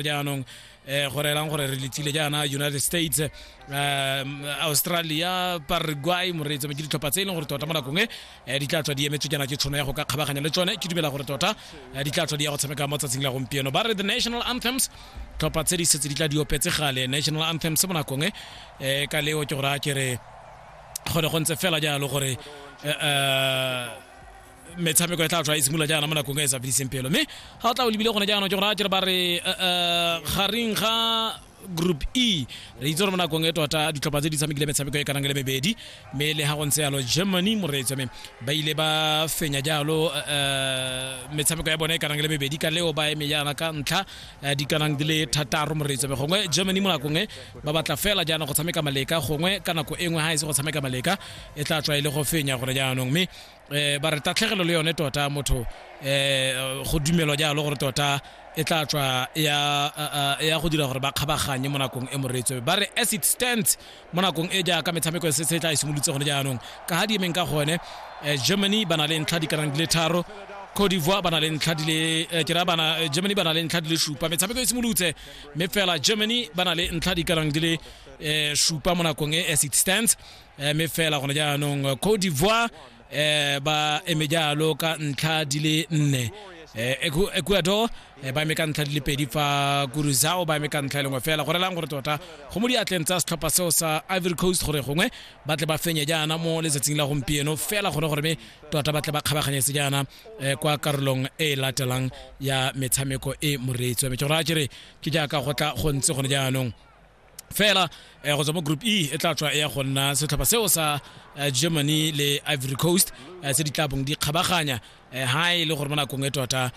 jaanong eh, go reelang gore re letsile jaana united states eh, australia paraguay moreetsa ke ditlhopha tse e leng gore tota mo nakong e eh, di tla tswa di emetswe jaana ke tshono ya go ka kgabaganya le tsone ke dumela gore tota eh, di tla tswa di ya go tshameka mo tsatsing la gompieno ba re the national anthems tlhopha tse di setse di tla di opetse gale national anthems mo nakong e eh, ka leo ke gore a ke re go ne go ntse fela jalo gore eh, eh, metshameko e tla tswa e simolola jaana mo nakong e e sa fediseng pelo mme ga o tla o lebile gone jaanong ke gore a kere ba re eh, eh, gareng ga group e re itse gore mo nakong e tota ditlhopha tse di tshamekile metshameko e kanang le mebedi mme le ga go ntse yalo germany moreetso mme ba ile ba fenya jalo eh, eh, metshameko ya bone e kanang le mebedi ka leo ba eme jaana ka ntlha eh, di kanang di le thataro moreetso mme gongwe germany mo nakong e ba batla fela jaana go tshameka maleka gongwe ka nako e nngwe ga e se go tshameka maleka e tla tswa e le go fenya gore jaanong mme eh ba re tatlhegelo le yone tota motho eh go dumelwa jalo gore tota e tla tswa ya ya go dira gore ba kgabaganye mo nakong e moreetso ba re as it stands mo nakong e jaaka metshameko e setse e tla e simolotse gone jaanong ka ga di emeng ka gone eh, germany ba na le ntlha di ka nang di le tharo Cote d'Ivoire ba na le ntlha di le eh, ke ra bana eh, Germany ba na le ntlha di le supa metshameko e simolotse mme fela Germany ba na le ntlha di ka nang di le eh, supa mo nakong e as it stands eh, mme fela gone jaanong cote d'ivoire eh, ba eme jalo ka ntlha di le nne eh, Ecu- ecuador eh, ba eme ka ntlha di le pedi fa kuruzao ba eme ka ntlha e lengwe fela go relang gore tota go mo diatleng tsa setlhopha seo sa ivory coast gore gongwe ba tle ba fenye jaana mo letsatsing la gompieno fela gone gore me tota ba tle ba kgabaganyetse jaana eh, kwa karolong e e latelang ya metshameko e moreetsi wa me ke gore a kere ke jaaka go tla go ntse gone jaanong fela um go tswa mo group e e tla tswa e ya go nna setlhopha seo sa eh, germany le ivory coast eh, tse di tla bong di kgabaganya ha e le gore mo nakong e tota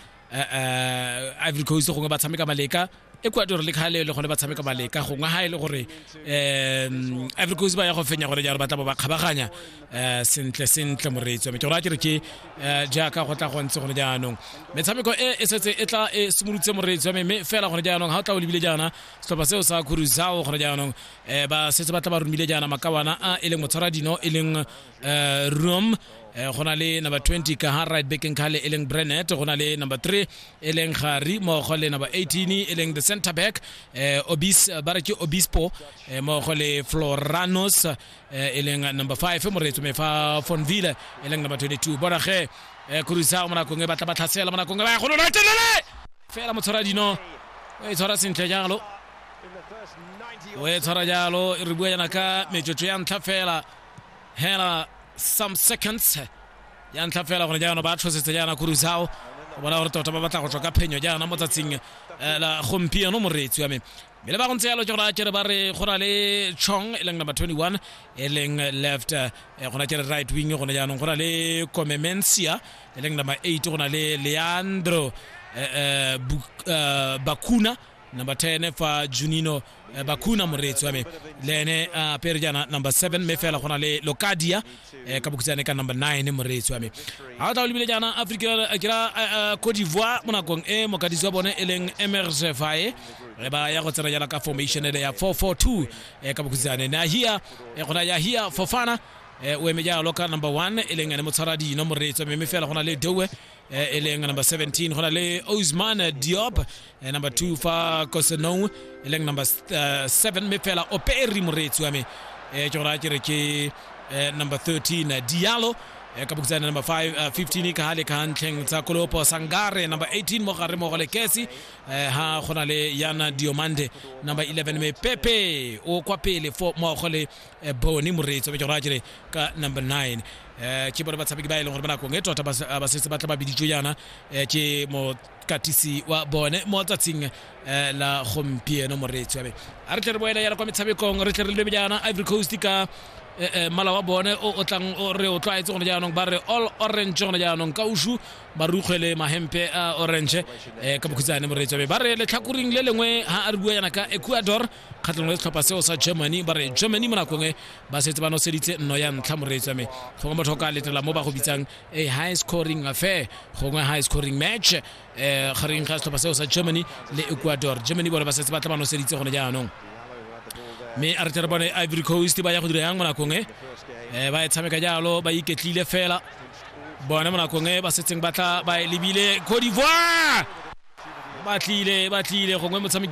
ivory coast gongwe ba tshameka maleka ecuador le kgale e le gone ba tshameka maleka gongwe ha e le gore um ivory coast ba ya go fenya gore jalo ba tla bo ba kgabaganya um sentle sentle moreetsi wa me ke gore a ke re ke um jaaka go tla go ntse gone jaanong metshameko e e setse e tla e simolotse moreetsi wa me mme fela gone jaanong ga o tla o lebile jaana setlhopha seo sa kuruzao gore jaanong um ba setse ba tla ba romile jaana makawana a e leng motshwara dino e leng um rom um go na le number 20 ka ha right back nkale e leng brenet go na le number 3 e leng gari mogo le number 18 e leng the center back um obis ba re ke obispo um mogo le floranos um e leng number 5 moreetso me fa fonville e leng number 22 bona ge um kuruzao mo nakong e batla ba tlhasela mo nakong e ba ya go lona telele fela motshwara dino o e tshwara sentle jalo o e tshwara jalo re bua yana ka metsotso ya ntlha fela hela some seconds ya ntlha fela gone jaana ba tshosetse jaana kurusao o bona gore tota ba batla go tswa ka phenyo jaana mo tsatsing eh, la gompieno moreetsi wa me mme le ba go ntse yalo ke gore a kere ba re go na le chong e leng number 21 e leng left eh, go na kere right wing gone jaanong go na le comemencia e leng number 8 go na le leandro eh, eh, Buk- eh, bakuna number 10 fa junino eh, bakuna moreetsi wa me le ene a pere jaana number 7 mme fela go na le locadia eh, ka bokhutshwane ka number 9 moreetsi wa me ga o tla o lebile jaana aforika eh, ke ra eh, cote d'ivoire mo nakong e mokadisi wa bone e leng emerge fae re ba ya go tsena jaana ka formation ele ya 442 eh, ka bokhutshwane nahia eh, gona yahia fofana eh, o eme jalo ka number 1 e leng ene motshwara dino moreetsi wa me mme fela go na le doe eh, e leng number 17 go na le osman diop eh, number 2 fa kosenou e leng number 7 mme fela operi moreetsi wa me eh, ke gora ke re ke eh, number 13 eh, dialo eh, ka bokitsane number 5 uh, 15 ka hale ka ntlheng tsa kolopo sangare number 18 mo gare mo go le kesi eh, ha go na le yana diomande number 11 me pepe o kwa pele fo mo go le eh, bone moreetsi wa bejara jere ka number 9 eh ke bone batshameki ba e leng gore ba nakong e tota ba se- ba setse ba tla ba biditswe yana eh, ke mokatisi wa bone mo tsatsing eh, la gompieno moreetsi wa me a re tle re boela yana kwa metshamekong re tle re lebe jaana ivory coast ka eh, eh, mmala wa bone o o tlang o re o tlwaetse gone jaanong ba re all orange gone jaanong ka usu ba rukgwele mahempe a orange eh, ka bokhutsane moreetsi wa me ba re letlhakoring le lengwe ha a re bua yana ka ecuador kgatlhanong le setlhopha seo sa germany ba re germany mo nakong e ba setse ba noseditse nno ya ntlha moreetswa me gongwe motho o ka letela mo ba go bitsang a high scoring affair gongwe high scoring match um gareng ga setlhopha seo sa germany le ecuador germany bone ba setse ba tla ba noseditse gone jaanong mme a re tle re bone ivory coast ba ya go dira yang mo nakong e um ba e tshameka jalo ba iketlile fela bone mo nakong e ba setseng ba tla ba e lebile codivoire ba tlile ba tlile gongwe motshameki